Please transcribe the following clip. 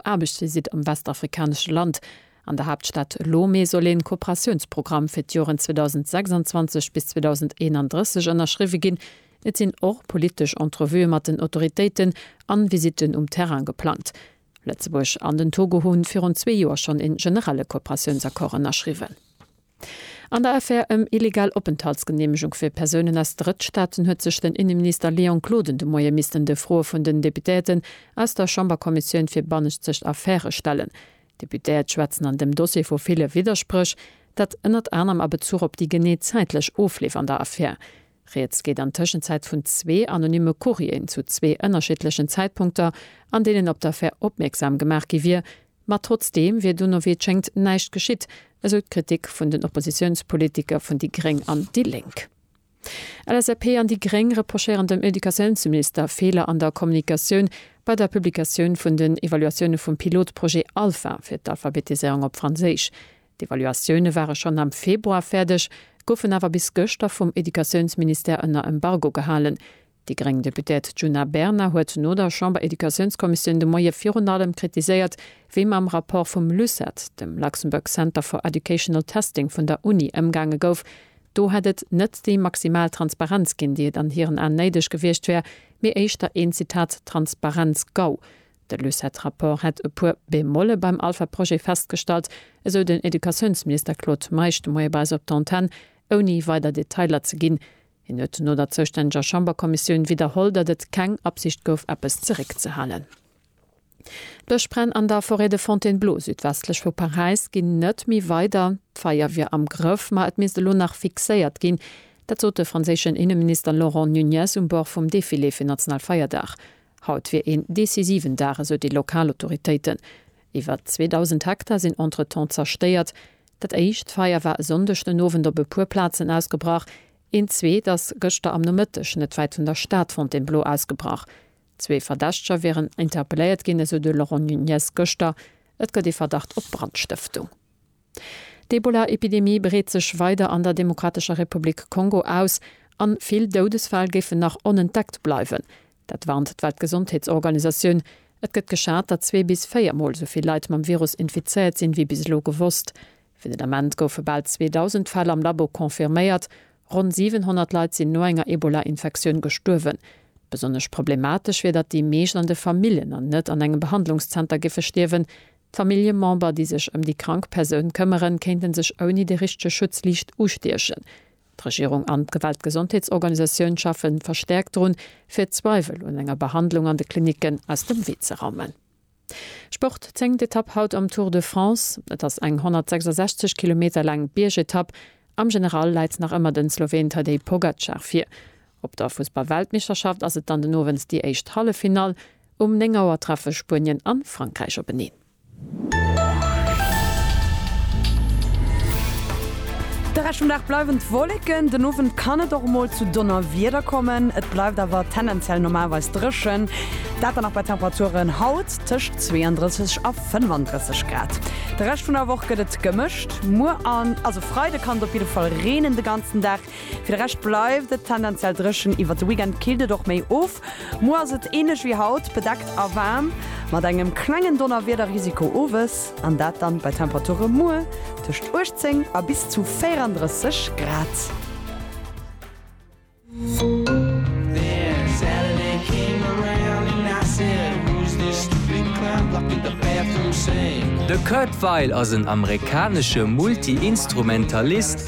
Aarbechtsvisitt am westafrikanesche Land. An der Haaptstad Lome soll ee Kooperatiounsprogramm fir d'Joren 2026 bis 2031 ënnerschriwwe ginn. Et sinn och politesch Entrevuë mat den Autoritéiten an Visitten um Terrain geplangt. Lëtzebuerg an den Togo hunn virun zwee Joer schonn een generelle Kooperatiounsaccord ënnerschriwwen. An der Affär ëm illegal Openthaltsgeneemegung fir Persounen aus Drëttstaaten huet sech den Inneminister Léon Gloden de Moie missten de Froe vun den Deputéierten aus der Chamberkommissioun fir bannenzegt Affäre stellen. D'Deputéiert schwätzen an dem Dossier vu ville Widderspréch, dat ënnert anerem a Bezuch op déi genee zäitlech Ofleef an der Affär. Rieds geet an Tëschenzäit vun zwee anonymme Courrieren zu zwee ënnerschiddlechen Zäitpunkter, an deenen op d'Affär opmierksam gemaach gi wier, ma trotzdeem wier dono, wéi et schéngt, näischt geschitt, esou d'Kritik vun den Oppositiounspolitiker vun déi gréng an déi lénk. LSAP an déi gréng reprochéieren dem Educatiounsminister Feeler an der Kommunikatioun bei der Publikatioun vun den Evaluatioune vum Pilotprojet Alpha fir d'Alphabetiséierung op Franséisch. D'Evaluatioune ware schonn am Februar fäerdeg, goufen awer bis gëschter vum Educatiounsministère ënner Embargo gehalen. Déi gréng Deputerte Djuna Bernard huet no der Chamber-Educatiounskommissioun de Moie virun allem kritiséiert, wéi mam Rapport vum LUCET, dem Luxembourg Center for Educational Testing vun der Uni, ëmgaange gouf. Do hätt et net déi maximal Transparenz ginn, déi et an hiren Aen néideg gewiescht wär, mee éischter een, Zitat, Transparenz-GAU. De Lucet-Rapport hätt e puer Bemolle beim Alpha-Projet festgestallt, esou den Educatiounsminister Claude Meisch de Moie bei eis op der Antenn, ouni weider Detailer ze ginn. Hien huet no der zoustänneger Chamberkommissioun widderholl, datt et keng Absicht gouf, eppes zeréckzehalen. D'Bëschbränn an der Forêt de Fontainebleau, südwestlech vu Paräis, ginn net méi weider. D'Feier wier am Grëff, ma et misst elo nach fixéiert ginn. Dat sot de franséischen Inneminister Laurent Nunez um Bord vum Defilé fir Nationalfeierdag. Haut wier een decisiven Dag, esou déi lokal Autoritéiten. Iwwert 2.000 Hektar sinn entretemps zerstéiert. Dat éischt Feier war e Sonndeg den Owend op e puer Plazen ausgebrach. Een zweet ass gëschter am Nomëtteg net wäit vun der Stad Fontainebleau ausgebrach. Zwee Verdächteger wieren interpelléiert ginn, esou de Laurent Nunez gëschter. Et gëtt ee Verdacht op Brandstëftung. D'Ebola-Epidemie breet sech weider an der Demokratescher Republik Kongo aus an vill Doudesfäll géifen nach onentdeckt bleiwen. Dat warnt d'Weltgesondheetsorganisatioun. Et gëtt geschat, datt zwee bis véier Mol esou vill Leit mam Virus infizéiert sinn, wéi bis elo gewosst. Fir den Ament goufe bal 2.000 Fäll am Labo confirméiert. Ronn 700 Leit sinn no enger Ebola-Infektioun gestuerwen. Besonnesch problematesch wier, datt déi meescht an de Famillen an net an engem Behandlungszenter géife stierwen. D'Familljemember, déi sech ëm déi krank Persoun këmmeren, kéinte sech ouni de richtege Schutz liicht ustiechen. D'Regierung an d'Weltgesondheetsorganisatioun schaffe verstäerkt drun, fir d'Zweiwel un enger Behandlung an de Klinicken aus dem Wee ze raumen. Sport, Zéngt Etapp haut am Tour de France. Et ass eng 166 Kilometer laang Biergetapp. Am General läit nach ëmmer de Sloween Tadej Pogacar vir. Op der Fussball-Weltmeeschterschaft ass et dann den Owend déi éischt Halleffinall. Um 9 Auer treffe Spuenien an Frankräich openeen. De Rescht vum Dag bleiwen d'Wolleken, den Owend kann et och mol zu Donnerwieder kommen. Et bleift awer tendenziell normalerweis dréchen, dat dann och bei Temperaturen haut tëscht 32 a 35 Grad. De Rescht vun der Woch gëtt et gemëscht, muer an also Freide kann et op jidde Fall reenen de ganzen Dag. Fir de Rescht bleift et tendenziell dréchen, iwwert de Weekend killt et och méi of. Muer ass et änlech wéi haut, bedeckt a waarm, mat engem klengen Donnerwiederrisiko owes, an dat dann bei Temperature muer tëscht 18 a bis zu 34 Grad. De Kurt Weill ass en amerikanesche Multi-Instrumentalist,